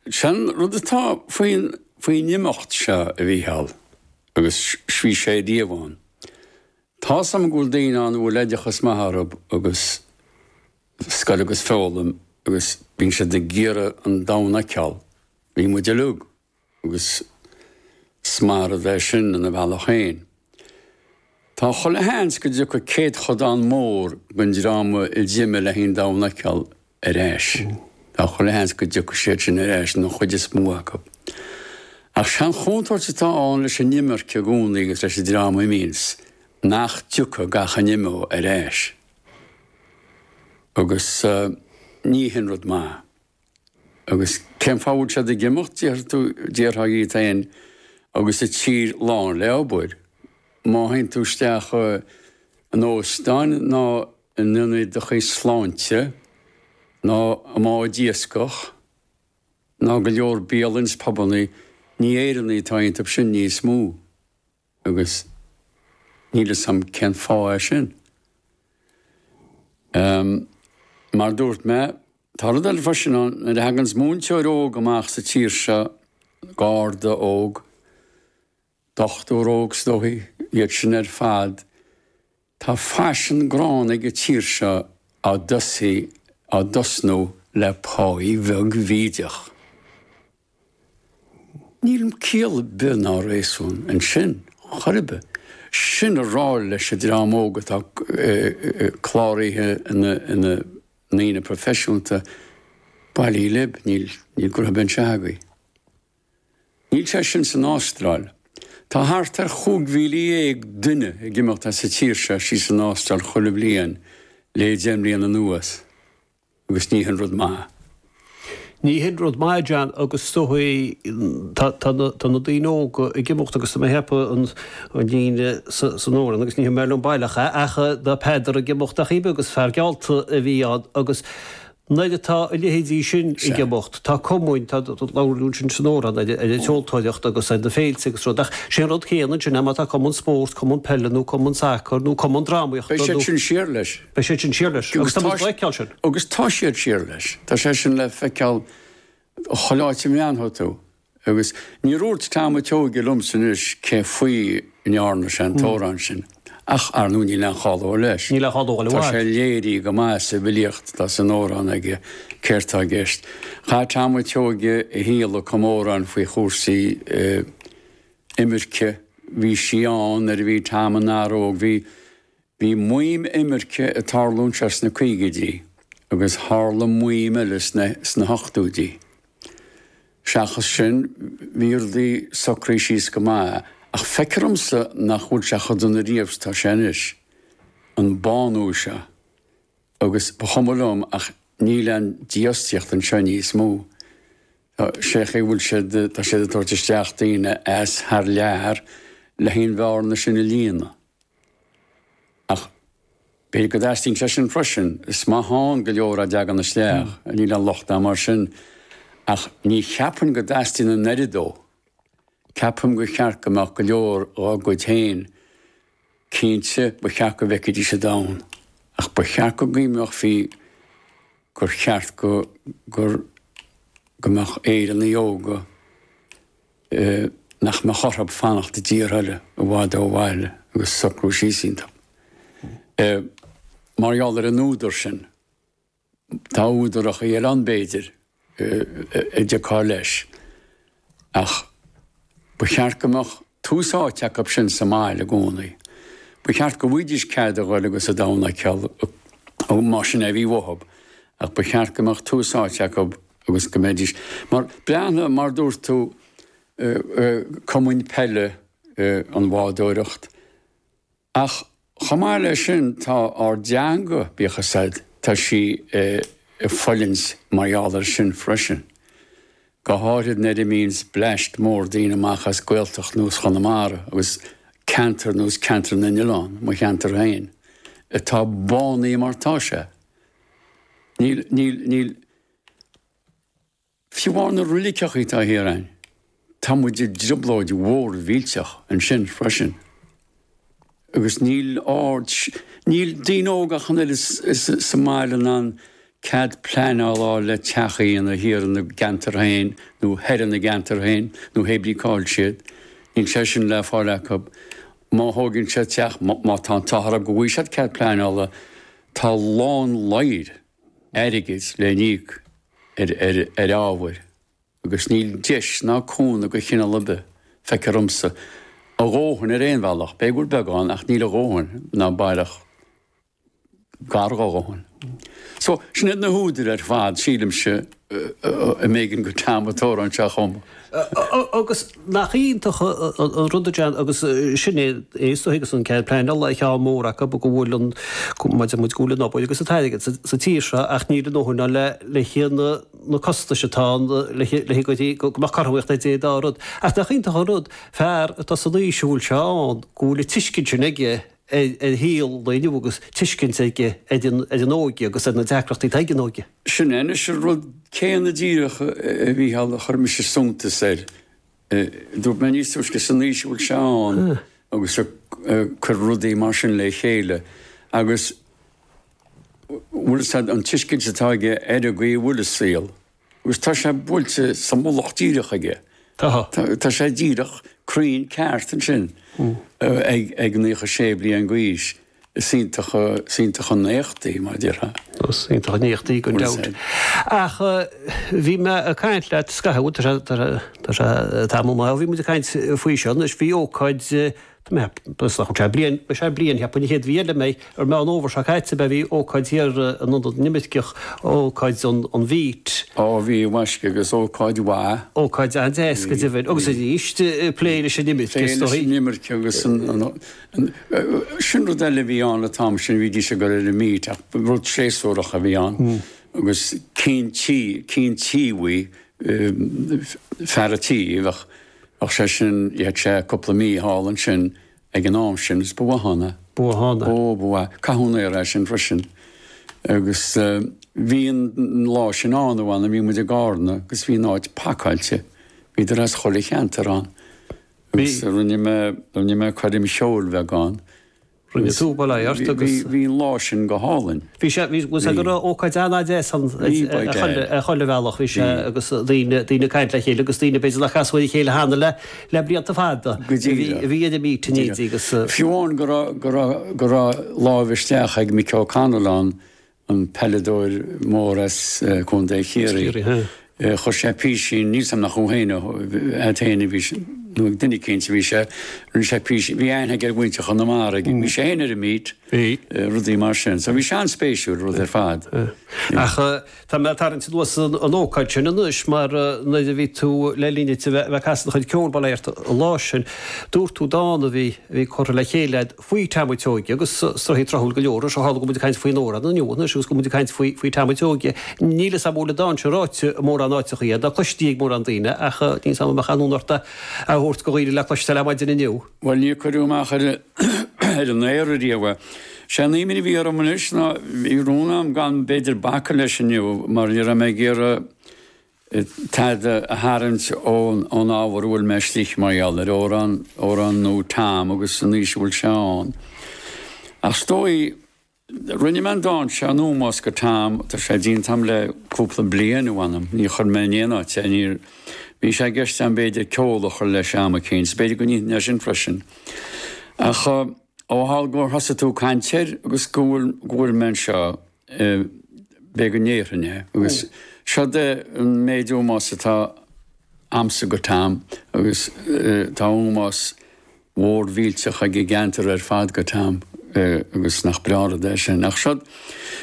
Sé an rud atá faoin faoin imeacht seo, a Mhícheáil, agus bhí sé riamh ann. Tá's agam go bhfuil daoine ann a bhfuil oideachas maith orthu agus scoil agus foghlaim agus bíonn siad ag iarraidh an domhan a fheiceáil. Bhí muid uilig agus is maith an rud é sin ina bhealach féin. Tá chuile sheans go dtiocfaidh céadchodán mór den dream a d'imigh le haghaidh an domhan a fheiceáil ar ais. Tá chuile sheans go dtiocfaidh siad sin ar ais, nó an chuid is mó acu. Ach sé an chontúirt atá ann leis an imirce i gcónaí agus leis an dream a imíonns, nach dtiocfaidh gach a n-imeoidh ar ais. Agus ní hin rud maith. Agus cén fáth a bhfuil siad ag imeacht, d'iarrfá dhíot féin, agus an tír lán le obair? Má théann tú isteach in óstán ná in ionad do chuid sláinte, ná i mbád iascach, ná go leor bialann 's pubanna, ní Éireannaigh atá iontub sin níos mó. Agus níl 'fhios a'm cén fáth é sin. Ehm, mar a dúirt mé, tá rud eile freisin ann, nuair a thaganns múinteoir óg amach sa tír seo, garda óg, dochtúir óg is dóigh, iad sin ar fad, Tá faisean gránna ag an tír seo á dtosaí á dtosnú le páí bheag bhídeach. Níl ciall ar bith ná réasún ansin chor ar bith. Sin ag rá leis an dream óg atá cláraithe ina ndaoine proifisiúnta, bailígí lib, níl, níl gnotha ar bith anseo agaibh. Níl sé sin san Ástráil. Tá thart ar chúig mhíle dhéag duine ag imeacht as an tír seo síos san Ástráil chuile bhliain le deich mbliana anuas, agus ní hin rud maith. Ní hin rud maith, a John, agus is dóigh tá na daoine óga ag imeacht agus tá mé ag ceapadh an líne san amhrán agus ní cuimhin liom baileach ach tá Peadar ag imeacht ar chaoi ar bith agus fear geallta a bhí ann agus Nuair atá a leithéidí sin ag imeacht, tá cumann, tá labhairt ansin san amhrán ar an tseoltóireacht agus ar na féilte agus rud, ach sé an rud céanna ansin é má tá cumann spóirt, cumann peile nó cumann sacair nó cumann drámaíochta nó. Beidh siad sin siar leis. Beidh siad sin siar leis. Agus tá muid ag feiceáil sin. Agus tá siad siar leis. Tá sé sin le feiceáil chuile áit a mbreathnóidh tú. Agus níor dhúirt Tom an tSeoighe liomsa anois cé faoi a ndearna sé an t-amhrán sin, ach, ar ndóigh, níl aon chall dó leis. Tá sé léirithe go maith sa bhfilíocht atá san amhrán aige céard tá i gceist. Chaith Tom an tSeoighe a shaol ag cumadh amhráin faoi chúrsaí imirce. Bhí sí ann nuair a bhí Tom ina fhear óg. Bhí. Bhí maoim imirce ag tarlúint as na caogaidí agus tharla maoim eile sna hochtóidí. Seachas sin, bhí rudaí socraithe síos go maith, ach feicthear dhomsa nach bhfuil sé cho dona riamh 's tá sé anois, an bánú seo, agus ba chuma liom ach níl a'n dífhostaíocht anseo níos mó. Tá sé an chaoi a bhfuil siad, tá siad ag tabhairt isteach daoine as thar lear le haghaidh an bhearna sin a líonadh. Ach b'fhéidir go dteastaíonn sé sin freisin. Is maith ann go leor dá dteagann isteach, níl aon locht agam air sin, ach ní cheapfainn go dteastaíonn an oiread dó. Ceapaim gur cheart go mbeadh go leor dhár gcuid féin. Cinnte, ba cheart go bhfeicfidís an domhan, ach ba cheart go gcoinneochfaí gur cheart go mbeadh Éireannaigh óga, nach mbeadh orthu fanacht i dtíortha eile i bhfad ó bhaile agus socrú síos iontu. Mar gheall ar an údar sin, tá údaracha eile ann, b'fhéidir, a dtiocfá leis, ach ba cheart go mbeadh tús áite acu sin sa mbaile i gcónaí. Ba cheart go bhfaighidís cead a ghoil agus an domhan a shiúl, más sin é a bhí uathu, ach ba cheart go mbeadh tús áite acu agus go mbeidís mar, Breathnaigh, mar dúirt tú, cumainn peile, an bhádóireacht, ach chomh maith leis sin, tá ár dteanga, bíodh a fhios agat, tá sí ag fulaingt mar gheall air sin freisin, go háithrid nuair a imíonns bleaist mór daoine amach as Gaeltacht nó as Chonamara agus ceantar nó as Ceantar na nOileán, mo cheantar féin, atá bánaithe mar tá sé. Níl, níl, níl. Fiú amháin na reiligeacha atá thiar ann, tá muid i dtrioblóid mhór mhillteach ansin freisin. Agus níl ar, níl daoine óga ach an oiread sa mbaile in ann cead pleanála a fháil le teach a dhéanamh thiar ina gceantar féin, nó thoir ina gceantar féin, nó hé brí cá'il siad. Níl sé sin le fáil acu. Má thóigeann siad teach, má tá an t-ádh orthu go bhfaighidh siad cead pleanála, tá lán ladhair, airgid le n-íoc ar ábhair agus níl deis ná cúnamh de chineál ar bith feicthear dhomsa, a dhóthain ar aon bhealach, b'fhéidir go bhfuil beagán ach níl a dhóthain ná baileach gar dhá dhóthain. So, sin iad na húdair ar fad, sílimse. am éigin go ceann an teorainn seo chugam. Agus nach iontach an rud é sin, agus sin é is dóigh agus an cead pleanála ar cheann mór acu go bhfuil an, mar a deir muid go bhfuil an obair agus an t-airgead sa tír seo ach níl a ndóthain ann le haghaidh na costais atá ann le haghaidh go dtí go mbeadh cothromaíocht idir an dá rud. Ach nach iontach an rud, fear atá san aois a bhfuil sé ann, go bhfuil an tuiscint sin aige, ar shaol an lae inniu agus tuiscint aige don óige agus ar na deacrachtaí atá ag an óige. Sin é anois an rud céanna díreach, a Mhícheáil, a chuir mise suntas air. Dúirt mé níos túisce san aois a bhfuil sé ann agus ag cur rudaí mar sin le chéile agus bhfuil an tuiscint atá aige ar an gcaoi a bhfuil an saol. Agus tá sé buailte sa mullach díreach aige. Tá. Tá sé díreach, cruinn, ceart ansin ag naocha sé bliain d'aois. Is iontach, is iontach an éacht í, mar a déarfá. Is iontach an éacht í, gan dabht. Ach bhí mé ag caint leat scaitheamh, tá sé tamall maith ó bhí muid ag caint faoi seo, anois bhí ócáid Sé bliain, cheapfainn, an chéad mhí eile b'fhéidir, Meán Fhómhair seo caite a bhí ócáid thiar in Ionad na nImirceach, ócáid an Bheet. Ó, bhí, mhaisc, agus ócáid mhaith. Ócáid an-deas, go deimhin. Agus arís, plé leis an imirce, is dóigh. Plé leis an imirce agus an, sin rud eile a bhí ann an t-am sin, bhídís ag obair ar an mBeet ach ba rud séasúrach a bhí ann agus cinn tí, cinn tí a bhí, fear a' tí a bheadh, Ach sé sin, chaitheadh sé cúpla mí thall ansin ag an am sin agus ba mhaith ann é. Ba mhaith ann é. Ó, ba mhaith. Caith an aer é sin freisin. Agus bhí an lá sin ann a mh'anam, bhí muid i gCarna agus bhí an áit pacáilte. Bhíodar as chuile cheantar ann. Bhí. Agus rinne mé, rinne mé coirm cheoil bheag ann. Rinne tú, bail ó Dhia ort agus. Bhí an lá sin go hálainn. Bhí sé, bhí, bhí sé go raibh ócáid an-deas ann ar chuile bhealach, bhí sé agus daoine, daoine ag caint le chéile agus daoine b'fhéidir nár chas le chéile cheana le, le blianta fada. Go díreach. Bhí idir míthuiscintí agus. Fiú amháin go raibh, go raibh, go raibh láimh isteach ag Mick O'Connell ann an peileadóir mór as Contae Chiarraí, chuir sé písín, níl 's agam nach a'm féin nó a'd féin a bhí sé, nó ag duine éicínt a bhí sé, rinne sé písín, bhí aithne aige ar mhuintir Chonamara, bhí sé féin ar an mbeet, rudaí mar sin. So bhí sé an-spéisiúil, rud ar fad. Ach tá mé ag tarraingt anuas an ócáid sin anois, mar nuair a bhí tú le linn duit a bheith ag casadh do chuid ceoil, ba léir an lá sin, dúirt tú dán a bhí curtha le chéile a'd, faoi Tom a' tSeoighe agus rud atá tráthúil go leor. Is ó tharla go bhfuil muid ag caint faoin amhrán inniu, anois agus go bhfuil muid ag caint faoi Tom a' tSeoighe. Níl fhios agam an bhfuil an dán sin ráite i mórán áiteachaí a'd ná cloiste ag mórán daoine, ach níl fhios agam an mbeadh aon fhonn ort é a thabhairt do dhaoine le cloisteáil ar maidin inniu. Bhuel, níor cuireadh amach ar an aer ariamh é. Sé an imní a bhí orm anois ná, bhí rún agam gan b'fhéidir bacadh leis inniu, mar ní raibh mé ag iarraidh, taighde a tharraingt ón ábhar a bhfuil mé istigh mar gheall air, ar, ar ndóigh, Tom agus an aois a bhfuil sé ann. Ach is dóigh, rinne mé an dán seo in ómós go Tom, tá sé déanta a'm le cúpla bliain, ach m'anam, níor chuir mé in aon áit é, níor, bhí sé i gceist agam b'fhéidir ceol a chur leis am eicínt, so b'fhéidir go ndéanfainn é sin freisin. Ach, ó tharla gur thosaigh tú ag caint air agus go bhfuil, go bhfuil mé anseo, b'fhéidir go ndéarfainn é agus seod é an méid ómós atá a'msa go Tom agus tá ómós mhór mhillteach ag an gceantar ar fad go Tom agus nach breá rud é sin ach seo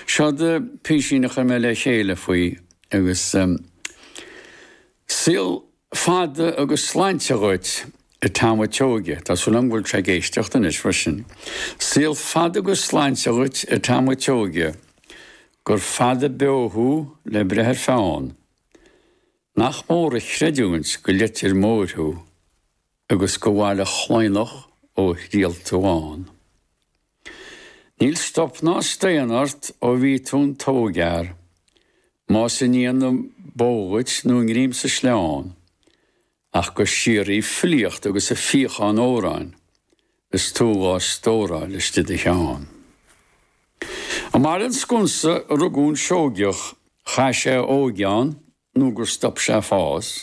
seod é písín a chuir mé le chéile faoi agus saol Fada agus sláinte dhuit, a Tom an tSeoige. Tá súil agam go bhfuil tú ag éisteacht anois freisin. Saol fada agus sláinte dhuit, a Tom an tSeoige. Gur fada beo thú le breith ar pheann. Nach mór an chreidiúint go Leitir Móir thú. agus go Bhaile Chlaonadh ó thriall tú ann. Níl stop ná staon ort ó bhí tú in d'ógfhear, más i ndiaidh na bó dhuit nó i ngreim sa sleán, ach go síoraí ag filíocht agus ag fíochán amhráin is tú dhá stóráil istigh i do cheann. I mBaile an Sconsa a rugadh an Seoigeach, chaith sé a óige ann nó gur stop sé fás,